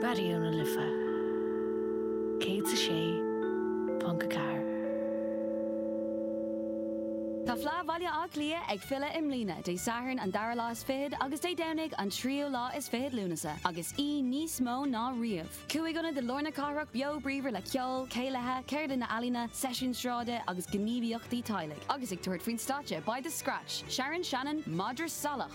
Raidió na Life 106.4. Tá Fleadh Bhaile Átha Cliath ag filleadh i mbliana, Dé Sathairn an dara lá is fichead agus Dé Domhnaigh an tríú lá is fichead Lúnasa, agus í níos mó ná riamh. Cúig ionad i lár na cathrach beo bríomhar le ceol, céilithe, ceardlanna ealaíne, seisiúin sráide agus gníomhaíochtaí teaghlaigh, agus ag tabhairt faoin stáitse beidh The Scratch, Sharon Shannon, Madra Salach,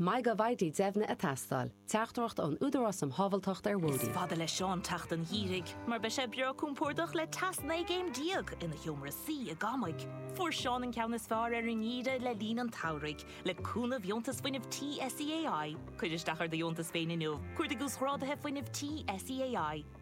Maith go bhfaighidh deimhniú ag teastáil. Teachtaireacht ón Údarás um Shábháilteacht ar Bhóithre. Is fada le Seán teacht an gheimhridh mar beidh sé breá compordach le teas 19 gcéim ina sheomra suí i gCamaigh. Fuair Seán an ceann is fearr ar an ngeimhreadh le linn an tsamhraidh le cúnamh dheontas fuinnimh tí SEAI. Cuir isteach ar do dheontas féin inniu. Cuardaigh uasghráduithe fuinnimh tí SEAI.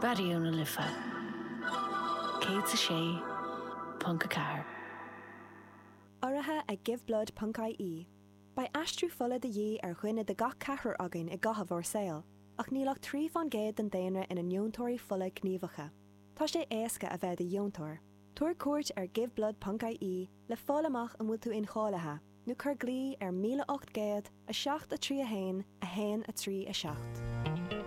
Raidió na Life 106.4. Urraithe ag Give Blood ponc IE, beidh aistriú fola de dhíth ar dhuine de gach ceathrar againn i gcaitheamh ár saoil, ach níl ach trí faoin gcéad den daonra ina ndeontóirí fola gníomhacha. Tá sé éasca a bheith i do dheontóir. Tabhair cuairt ar Give Blood ponc IE le fáil amach an bhfuil tú incháilithe, nó cuir glao ar 1800 7 3 1 1 3 7.